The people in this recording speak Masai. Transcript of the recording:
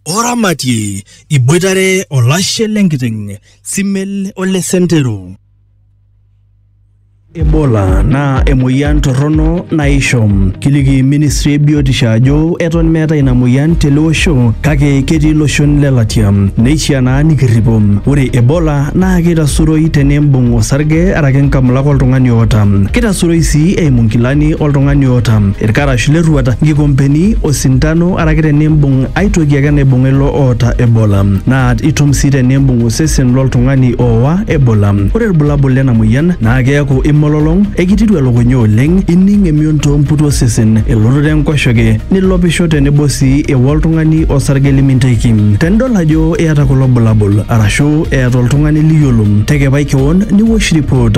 oramatie iboitare olashe lenkiteng simel ole sentero Ebola naa emoyian torrono naisho. Kiliki ministry e biotisho ajo eton meetae ina moyian tele osho kake ketii iloshon le latia. Neishiaa naa nikirripo. Ore Ebola naa keitasuroi tenimbung osarge araki nkamulak oltung'ani oota. Keitasuroi sii eimu nkilani oltung'ani oota ilkarash lerruata, nkikompeni, osintano araki tenimbung ai toki ake naibung'a ilo oota Ebola. Naa itum sii tenimbung osesen loltung'ani oowa Ebola. Ore ilbulabul lena moyian naa keaku imololong, ekitiru elukunya oleng, ining emion too mputi osesen, elototo enkoshoke, nilopisho tenebo sii ewa oltung'ani osarge liminteki. Tenidol ajo iyata kulo bulabul arashu eeta oltung'ani liyiolo, tekepai kewon niwosh ripot.